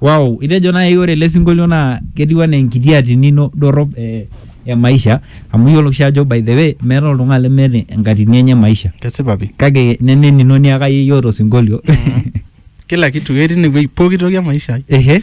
Wow, itejo nai ore ele sinkolio naa ketiu anaa enkiti atini ino dorrop eh, e maisha amu iyiolo oshi ajo by the way meeta oltung'ani lemeeta enkatini enye e maisha kesipa pi kake neme enino niaka yeyie oota osinkolio kila kitu ketii inewueji pooki toki e maisha ai ehe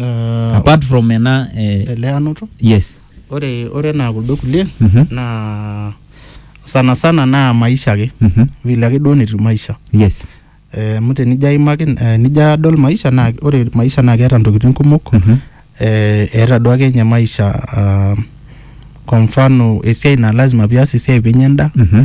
Ah, apart from ena eh, eleanoto yes ore ore enaa kuldo kulie Mhm. naa sana sana naa maisha ake Mhm. vile ake duo netiu maisha yes Eh, amu tenijo aimaki eh, nijo adol maisha naa ore maisha naa keeta ntokitin kumok Mhm. eh, eeta duo ake nye maisha ah, kwa mfano esiai naa lazima pias esiai pinya endaa Mhm.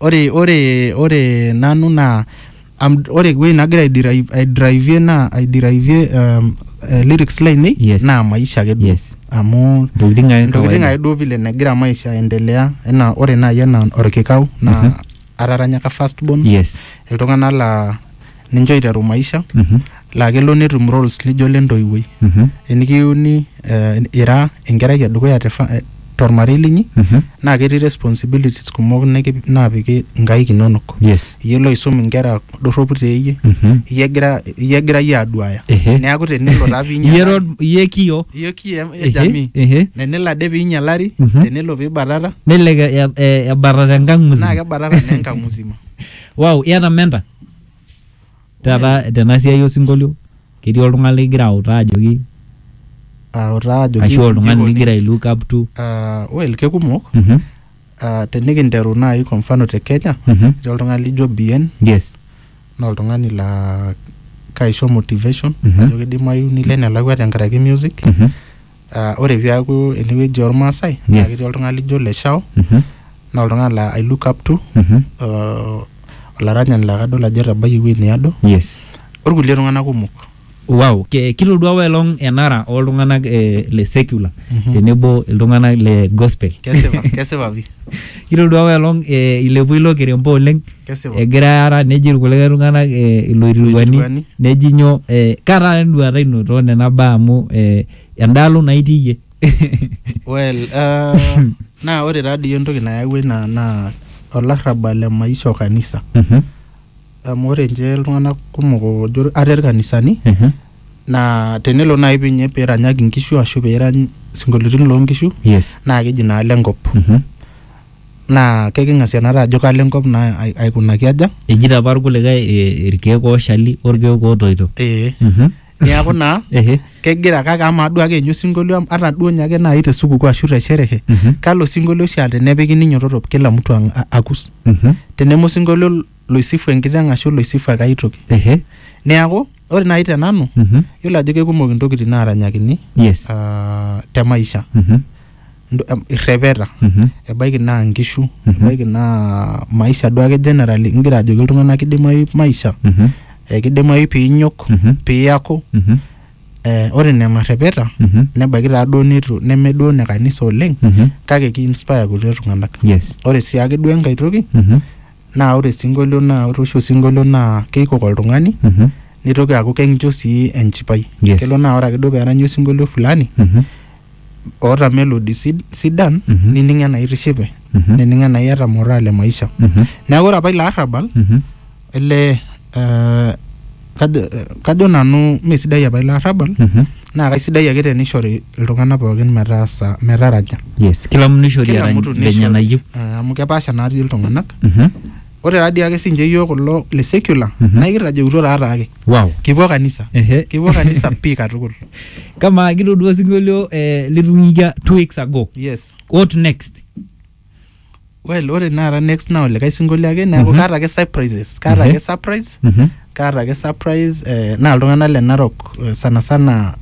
ore ore ore nanu naa am- ore ewueji nagira aidrive- aidrivie naa aidrivie um, eh, lyrics lainei Yes. naa maisha ake duo Yes. amu Ntokitin ake ntokitin kawaida. ake duo vile negira maisha aendelea enaa ore naaji enaa orkikau naa Mhm. ataranyaka first bones Yes. iltung'anak laa ninche oiteru maisha Mhm. laa kelo netum roles lijo le ntoiwuoi Mhm. enikiuni eh, ira enkerai edukuya te fa- eh, tormarei linyi Mhm. naa ketii responsibilities kumok niki- naapiki nkaik inonok yes iyie loisum inkera dorropu teeyie Mhm. iyie egira iyie egira iyie aduaya Ehe. neeku tenelo taa Iye piinyalari rod- iye kio iyie kii e- e Ehe, jamii ehe. tenelo ade piinyalari Mhm. tenelo piibatata nelelek e- e- ebatata enkang naa musima kebatata naa enkang musima wow iyata menta Taata tena siai osinkolio ketii oltung'ani ligira autaa ajoki autaa ajoki ashu oltung'ani inji ikoni. ligira ai look up to. Ah, well kekumok Mhm, Ah, tenikinteru naaji kwa mfano te kenya mhm. etii oltung'ani lijo bien Yes. naa oltung'ani laa kaisho motivation Mhm. ajo kidimayu nilo enelakua tenkaraki music Mhm. Ah, ore piaku enewueji ormaasai naa Yes. ketii oltung'ani lijo leshao Mhm. naa oltung'ani laa I look up to Mhm. uh, olaranyani laa kadol ajo etabayie ewueji neado yes orkulie tung'anak kumok wow Ke- kitodua apa elong enara oltung'anak eh, le secular Mhm. tenebo iltung'anak le gospel kesipa kesipa pi kitodua apa elong eh, ilepua ilo kirempo oleng Kesipa. egira aara neji irkulikae tung'anak eh, iloitirwuani Iloitirwuani. neji nyoo eh, kaa taata enduata ino too nena baa amu eh, endaalo naa itii iyie well uh, naa ore taa dii entoki nayawua ina naa olarrabal le maisha o kanisa Mhm, amu ore nche iltung'anak kumok ojo ate irkanisani mhm. naa tenelo naaji pinye piranyaki inkishu ashu pirany sinkolioitin loonkishu yes naa keji naa lenkop Mhm. naa keking'asia naata ajo kalo enkop naa ai- aikunaki aja Ejito apa irkulikae eh, irkeek ooshali orkeek ootoito. ee Mhm. niaku naa Ehe. kegira kake amaa duo ake ninye osinkolio am- ata duo ninye ake naaji te sukukuu ashu te sherehe Mhm. kalo sinkolio oshi aa tenepiki ninyototo kila mtu ang- a- akus Mhm. teneme osinkolio loisifu enkiteng ashu loisifu ake ai toki Ehe. niaku ore naaji te nanu Mhm. yiolo ajo kekumok intokitin naaranyakini Yes. ah, te maisha Mhm. ndo- em, irrepeta Mhm. ebaiki naa nkishu ebaiki naa maisha duake generally ingira ajoki iltung'anak kidimayu maisha Mhm. eh, kidimayu piinyok Mhm. piaku Mhm. eh, ore nena rrepeta Mhm. nebaiki taa duo nitu neme duo ne kanisa oleng Mhm. kake ki inspire kulie tung'anak yes ore sii ake duo enkae toki Mhm. naa ore sinkolio naa ore oshi osinkolio naa keikok oltung'ani Mhm. nitoki aaku kencho sii enchipai Yes. kelo naa ore ake duo peeranyi osinkolio fulani Mhm. oota melody sid, sidan Mhm. nining enaa itishipe Mhm. nining enaa iyata moraa le maisha Mhm. neeku ore apa ilo arrabal Mhm. ele eh, kajo, eh, kajo nanu mesidai apa ilo arrabal Mhm. naa kaisidai ake tenishori iltung'anak pookin metaasa metaraja yes kila mtu nishori Kila arany mtu venye nishori. nayieu Eh, amu kepaasha natii iltung'anak Mhm. ore taadii ake sinche yiok kulo le secular Mhm. naa ikirrajeutuo taataake wow kipuo kanisa Ehe. kipuo kanisa pii katukul kamaa kitodua osinkolio eh, litung'ikia two weeks ago yes what next well ore naara next naa olikae sinkolio ake neeku Mhm. kaata ake surprises kaata Ehe. ake surprise Mhm. kaata ake surprise eh, naa iltung'anak le narok eh, sana sana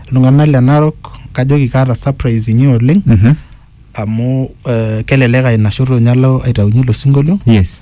iltung'anak le narok kajoki kaata surprise inyi oleng Mhm. amu eh, kelelek ainashoto ninye alo aitaunye ilo sinkolio yes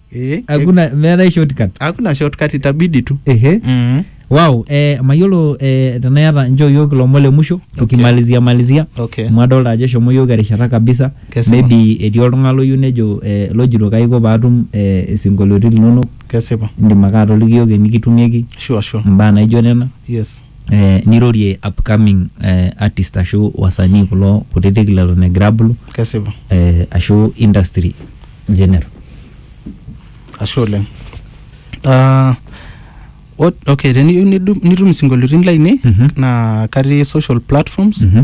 Eh, hakuna meetae shortcut hakuna shortcut itabidi tu ehe mm. wow eh, mayiolo eh, tenaa iyata nchoo yiok ilomon le musho Okay. tukimalizia malizia okay amu adolta ajo eshomo yiok erishata kabisa Kesipa. maybe etii oltung'ani loyieu nejo eh, lojito kaiko paatum eh, isinkolioitin linonok kesipa indim ake atoliki yiok enikitumieki sure sure imbaa naijo nena yes nirorie upcoming eh, artist ashu wasanii kulo kutitik leton egira abulu kesipa eh, ashu industry general ashe oleng Ah, ot- okay teniyieu nidu- nitum isinkolioitin lainei Mhm. naa katii social platforms Mhm.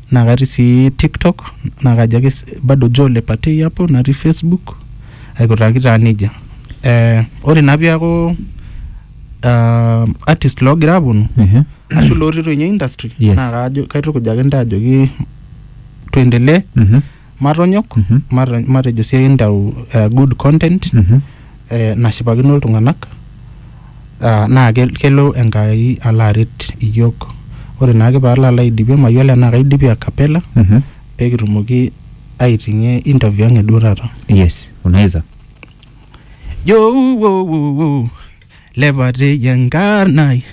naa katii sii tiktok naa kajo ake s- bado Joe Lepatei hapo natii facebook aikutaki taa nejia eh, ore naa piaku ah, artist loogira aponu Ehe. ashu lotii toi ninye industry Yes. naa kajo kaitukuj ake ntae ajoki tuendelee Mhm. matonyok Mhm. mata- matejo sii entau eh, good content Mhm. eh, nashipakino iltung'anak ah, naa ke- kelo enkai alo aret iyiok ore naake paalo alo aidipie mayiolo enaa kaidipie akapela Mhm. pekitumoki aiting'ie interview ang eduo taata yes unaweza jo wo, wo, wo. lepateyi enkarnai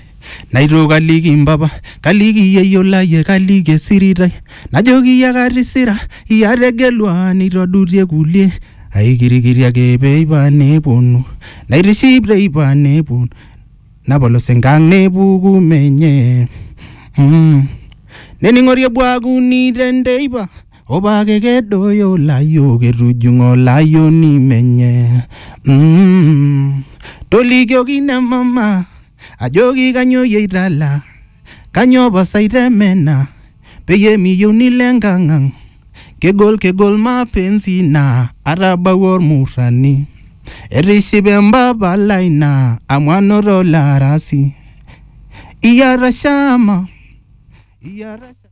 naito kaliki mpapa kaliki yeyio laye kaliki esiritai najoki iyie katisira iyie ategelua nitodutie kulie aikirikiri ake peipa neponu naitiship teipa neponu napolos enkang nepuku menye mm. nening'ori ebuakuni tenteipa Obake kedoyo layiok etujung'o layioni menye mm. Tolikioki ina mama ajoki kanyoo iyie itala kanyoo pasa itemena peyie miyieu nilo enkang ang kegol kegol mapenzi naa atabawua ormurrani etishipe empapa lai naa amu anoto olarasi iyata shama iyata shama